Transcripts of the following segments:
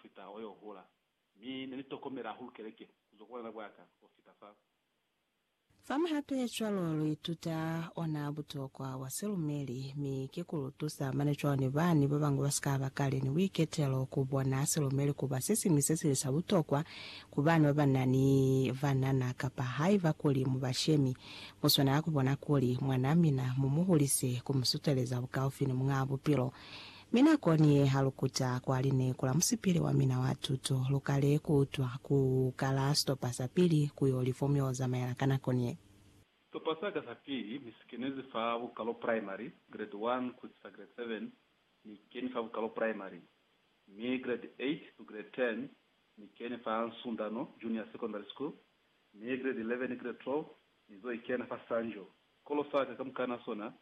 fita o yo hula, mi ne ni tokomela hahulu keleke ku zwa ku bulena bwa ka ho fita fa. Fa muhapecwalo, lu ituta ona butokwa bwa silumeli, mi ki ku lu tusa mane cwalo ni bani ba bañwi ba si ka ba kale ni buiketelo, ku bona silumeli ku ba se siñwi se sili sa butokwa ku bana ba ba na ni banana, kapa haiba kuli mu bashemi, mu swanela ku bona kuli mwanaa mina mu mu hulise ku mu suteleza bukaufi ni Muñaa Bupilo. Mi nakoni ye ha lu kuta kwa lineku la musipili wa mina wa tuto, lu kale ku utwa ku kala sitopa sa pili ku yo li fomu yo zamaela ka nakoni ye. Sitopa sa ka sa pili ni si kenezi fa bukalo primary, grade 1 ku isisa grade 7, ni keni fa bukalo primary, mi grade 8 ku grade 10 ni keni fa Nsundano Junior Secondary School, mi grade 11 ni grade 12 ni zo ikena fa Sanjo. Sikolo sa ka kamukana sona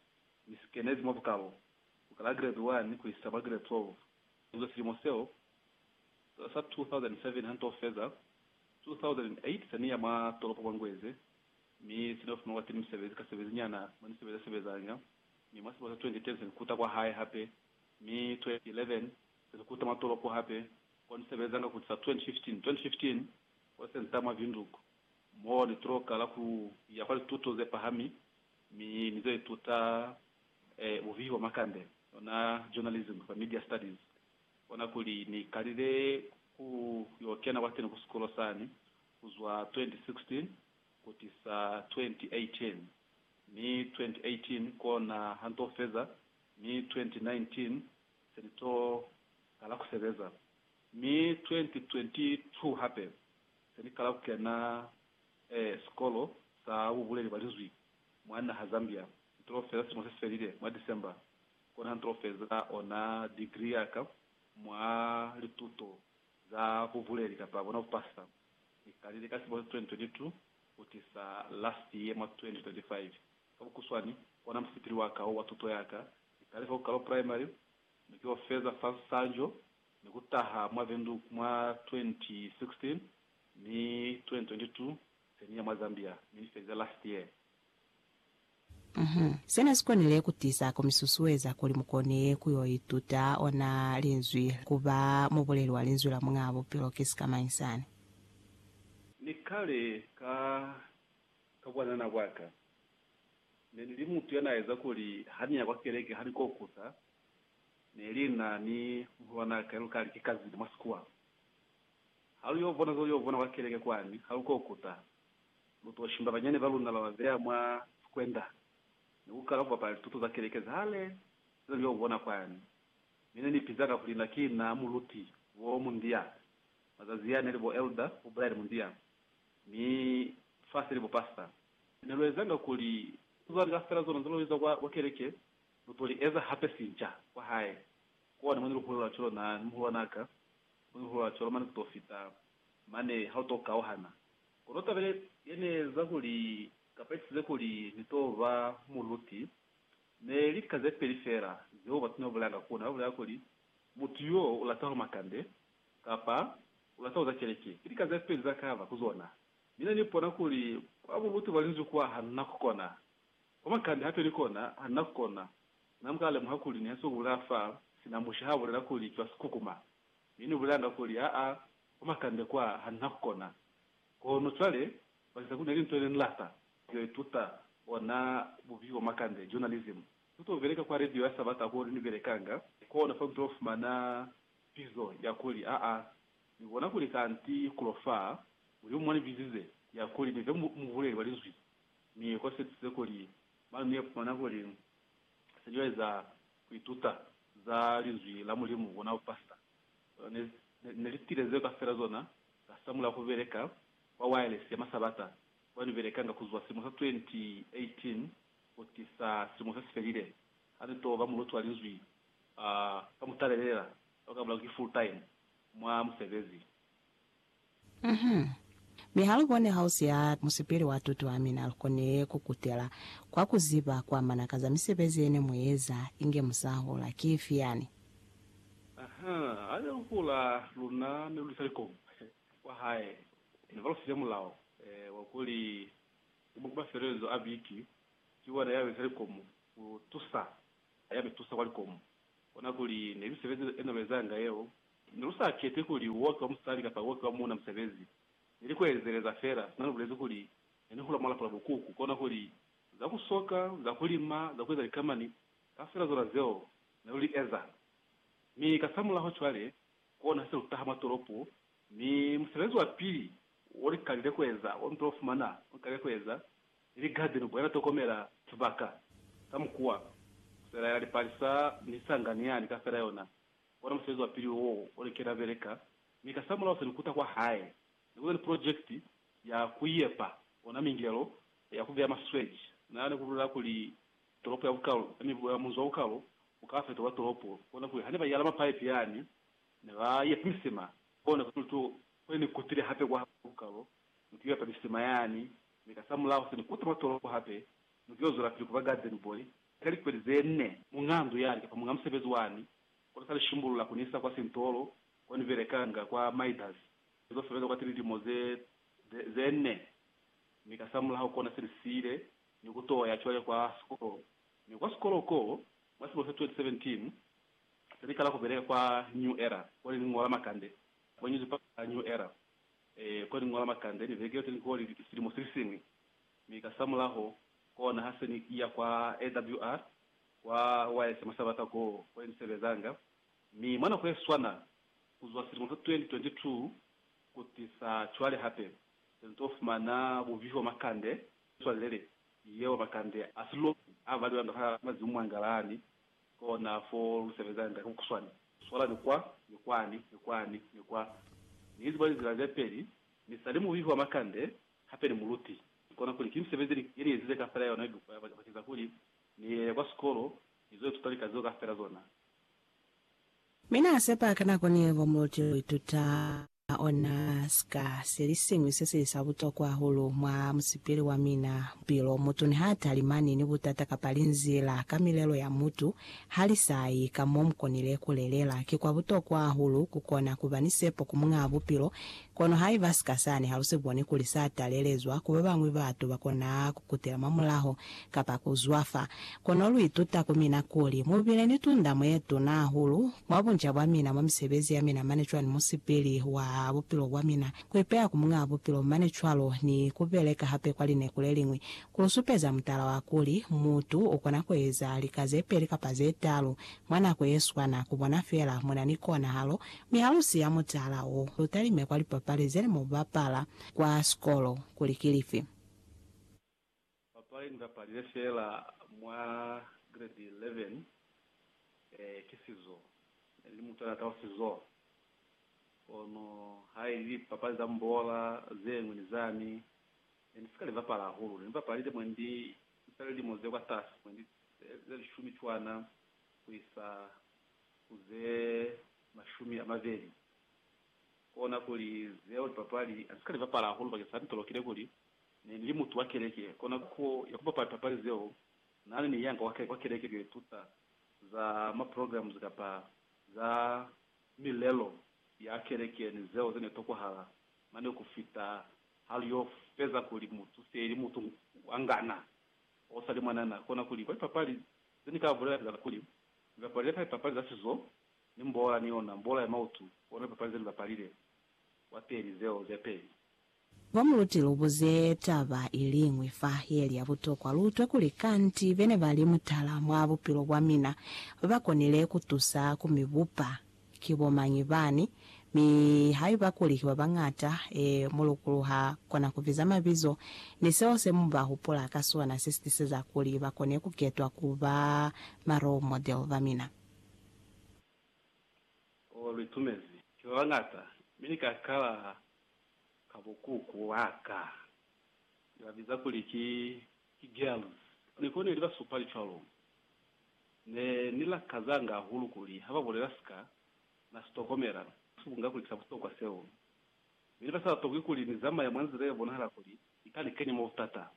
ni si kenezi mwa bukalo ku kala grade 1 ku isa mwa grade 12, inzwe silimo seo sa 2007 ha nto feza, 2008 se ni ya mwa tolopo mwa Ngweze, mi se ni yo fumana kwa teni misebezi ka sebezi nyana mo ni sebeza sebezanga, mi mwa silimo sa 2010 se ni kuta kwa hae hape, mi 2011 se ni kuta mwa tolopo hape ko ni sebezanga ku tisa 2015, 2015 ko se nta mwa Windhoek mo ni tulo kala ku ya kwa lituto ze pahami, mi ni zo ituta e uviwa Makande ona Journalism by Media Studies, ona kuli, Ni kalile ku yo kena kwateni ku sikolo sani kuzwa 2016 kutisa 2018, mi 2018 kona ha nto feza, mi 2019 se ni to kala ku sebeza, mi 2022 hape se ni kala ku kena e sikolo sa bubuleli bwa Linzwi Mwa naha Zambia, ntulo fela silimo se si felile, mwa December, kona ha ntulo feza ona degree yaka mwa lituto za bubuleli kapa bona bupasa. Ni kalile ka silimo sa 2022 kutisa last year mwa 2025. Ka bukuswani, kona musipili waka wo wa tuto yaka. Ni kale fa ku kalo primary, mi ki yo feza fa Nsanjo, ni kutaha mwa Windhoek mwa 2016, mi 2022 Semi ya mwa Zambia ne ni feza last year. Uhmm. Se ne si konile ku tiza ku mi susueza kuli mu kone ku yo ituta ona Linzwi, ku ba mubuleli wa Linzwi la Muñaa Bupilo ki sikamañi sani? Ni kale ka, ka bwanana bwa ka, ne ni li mutu ya n'a eza kuli ha ni ya kwa keleke ha ni kokusa, ne li na ni muhulwan'a ka yo lu kali ki kazini mwa sikuwa. Ha lu yo bona za lu yo bona kwa keleke kwani, ha lu ko kuta. Lu to shimba banyani ba luna ba ba beya mwa sikwenda, ni ku kala ku bapala lituto za keleke za hale ze ne lu yo bona kwani. Mi ne ni piza ka kuli na ki na muluti, Bo Mundia. Mazazi a ne li bo Elder, bo Brian Mundia, mi fa se li bo Pastor. Ne lu ezanga kuli lituto za lika fela zona ze lu iza kwa keleke, lu to li eza hape sinca kwa hae. Kwone mo ne lu hulela cwalo na ni muhulwan'a ka, Kuihuwa cwalo mane kuto fita mane ha uto kauhana. Kono taba ye, ye ne eza kuli, kapa ye tisize kuli ni to ba muluti, ne li lika ze peli fela zeo batu ne ba bulelanga ku na. Ba bulela kuli, Mutu yo u lata ho makande, kapa, U lata ho za keleke. Ki lika ze peli za kaba ku zona. Mi ne ni pona kuli, kwa buluti bwa Linzwi kwa, ha na ku kona. Komakani hape ni kona ha ni na ku kona, na muka lemuha kuli ni hasi ubulaa fa sina musha ha bulela kuli cwa sikukuma, mi ni bulelanga kuli, Aa, komakande kwa, ha ni na ku kona. Kono cwale, bakeza kuli neli nto yene ni lata, yo ituta ona bubi bwa makande, journalism. Ni to beleka kwa radio ya Sabata ko ni belekanga, kona fa ni to fumana pizo ya kuli, Aa, ni bona kuli kanti kulo fa, Mulimu mwa ni bizize, ya kuli ni be mubuleli wa Linzwi, Mi ko setuze kuli manu ne fumana kuli se cwale za ku ituta za Linzwi la Mulimu ku na ku pasta ne, ne li tile zeo kafela zona ka sa mulaho ku beleka kwa wireless ya masabata kwa ni belekanga ku zwa silimo sa 2018 ku tisa silimo se si felile, ha ni to ba muluti wa Linzwi a ka mutalelela, ka ku ka mulako ki full-time mwa musebezi. Uhum. Mi ha lu boni hausi ha musipili wa tuto ya mina, lu koni ku kutela kwa ku ziba kwa mana ka za misebezi ye ne mu eza inge mu sa hula. Ki ifi yani? Uhum. Ha ne lu hula, luna ne lu isa likomu kwa hae. Ne ba lu file mulao wa kuli umu ku mafelelezo a biki, ki wona ya beza likomu ku tusa. Ha ya mi tusa kwa likomu, kona kuli ne misebezi ye ne lu ezanga yeo Ne lu sa kete kuli u oki wa musali kapa u oki wa muuna musebezi. Ne ni ku ezeleza fela sina lu bulezi kuli ne ni hula mwa lapo la bukuku, kona kuli za ku soka, za ku lima, za ku eza likamani, kaufela zona zeo ne lu li eza. Mi kasamulaho cwale, kona ha se lu taha mwa tolopo, mi musebezi wa pili wo ni kalile ku eza, wo ni to fumana wo ni kalile ku eza, ni ligadeni ku ela tokomela sibaka, ka mukuwa, ku selaela lipalisa ni sanga ni yani kaufela yona, Kona musebezi wa pili wo o li kena beleka, mi kasamulaho se ni kuta kwa hae. Ne ku na ni pulojekiti ya ku yepa ona mingelo ya ku beya masweji. Na ni ku bulela kuli, Tolopo ya bukalu ya mibu ya munzi wa bukalu u ka fetolwa tolopo, kona kuli ha ne ba yala mapaipi yani, ne ba yepa misima. Kona kuli tu kwe ni kutile hape kwa bukalu, ni ku yo yepa misima yani, mi kasamulaho se ni kuta mwa tolopo hape, ni ku yo zwelapili ku ba garden boy Ka likweli ze nne, muñaa ndu ya lika fa muñaa musebezi wani, kono sa li shimbulula ku ni isa kwa sintolo ko ni belekanga kwa Midas. Ni zo sebeza kwati lilimo ze, ze, ze nne, mi kasamulaho kona se ni siile ni ku t'o ya cwale kwa sikolo. Mi kwa sikolo ko, mwa silimo sa 2017, se ni kala ku beleka kwa New Era, ko ne ni ñola makande, kwa nyuzipa ya New Era, ee, ko ne ni ñola makande, ni vekile lite ni koli silimo se li siñwi. Mi kasamulaho, kona ha se ni iya kwa AWR, kwa YS mwa Sabata koo ko ne ni sebezanga, mi mwa nako ye swana, kuzwa silimo sa 2022 kutisa cwale hape, se ni to fumana buvihi bwa makande, swalelele yeo makande a siloki a valiwa nda ha mazimu mwa ngalani, kona fo lu sebezanga ka bukuswani, swalani kwa, ni kwani, ni kwani, ni kwa. Ni iziba lizila ze peli, mi sali muvihi wa makande Hape ni muluti. Ki kona kuli ki misebezi ye ni ezize kaufela ya yona ye lukwa ba keza kuli ni ye kwa sikolo ni zo ituta lika zeo kaufela zona. Mi na sepa ki nako ni ngo muluti yo ituta ona sika se li siñwi se sili sa butokwa hahulu mwa musipili wa mina. Bupilo, mutu niha talimani ni butata kapa linzila ka milelo ya mutu, ha li sa yi ka mo mu konile ku lelela. Ki kwa butokwa hahulu ku kona kuba ni sepo ku Muñaa Bupilo Kono haiba sika sani ha lu si boni kuli sa talelezwa ku babañwi, batu ba kona ku kutela mwa mulaho kapa ku zwafa. Kono lu ituta ku mina kuli mu bile ni tundamo ye tuna hahulu mwa bunca bwa mina, mwa misebezi ya mina mane cwani musipili wa bupilo bwa mina, ku ipeya ku Muñaa Bupilo mane cwalo ni ku beleka hape kwa lineku le liñwi, ku lu supeza mutala wa kuli mutu u kona ku eza lika ze peli kapa ze talu mwa nako ye swana ku bona fela mu na ni konahalo Mi ha lu siya mutala wo, lu talime kwa lipapali ze ne mu bapala kwa sikolo kuli ki lifi. Papali ni bapalile feela mwa gredi 11 ki sizo. Ne ni li mutala ka sizo, kono ha ili lipapali za mbola ze ñwi ni zani, ne ni si ka li bapala hahulu. Ne ni bapalile mwe ndi za lilimo ze kwatasi mwe, ndi ze lishumi cwana ku isa ku ze mashumi a mabeli. Kona kuli zeo lipapali ha si ka li bapala hahulu bakeng sa nitolokile kuli ne ni li mutu wa keleke. Kona ku ya ku bapala lipapali zeo na ne ni yanga kwa keleke ku yo ituta za ma programs kapa za milelo ya keleke ni zeo ze ne tokwahala mane ku fita ha lu yo feza kuli mutu se li mutu wa ngana o sa li mwanana. Kona kuli kwa lipapali ze ni ka bulela fela kuli Ni bapalile fa lipapali za sizo, ni mboola ni yona, mboola ya mautu, ona lipapali ze ni bapalile, wa peli, zeo ze peli. Ba mu luti lu buze taba iliñwi fa ye li ya butokwa, lu utwe kuli kanti bene ba li mutala mwa bupilo bwa mina, ba konile ku tusa ku mi bupa. Ki bo mañi bani, mi haiba kuli ki ba bañata, e, mulukulu ha kona ku biza mabizo, ni seo se mu ba hupula ka sona se si tiseza kuli ba kone ku ketwa ku ba ma role model ba mina. Oh, lu itumezi. Ki ba bañata, mi ni ka kala ka bukuku bwa ka, ni ba biza kuli ki, ki girls. Ni koneli ba supa li cwalo. Ne ni lakazanga hahulu kuli ha ba bulela sika na si tokomela, si ku nga kuli ki sa butokwa seo. Mi ne ba sa la tokwi kuli ni zamaya mwa nzila ye bonahala kuli i ka ni kenya mwa butata.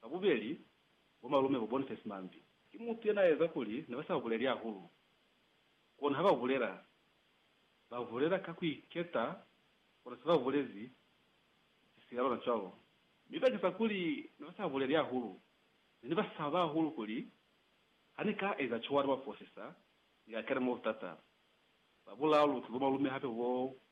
Ba bubeli bo malume bo Boniface Mambi. Ki mutu ye n'a eza kuli ne ba sa buleli hahulu. Kono ha ba bulela, ba bulela ka ku iketa kona se ba bulezi, ki sila lona cwalo. Mi bakeza kuli ne ba sa buleli hahulu, Ne ni ba saba hahulu kuli ha ni ka eza cwalo bafosisa ni ka kena mwa butata. Ba bulaalu ki bo malume hape bo 25.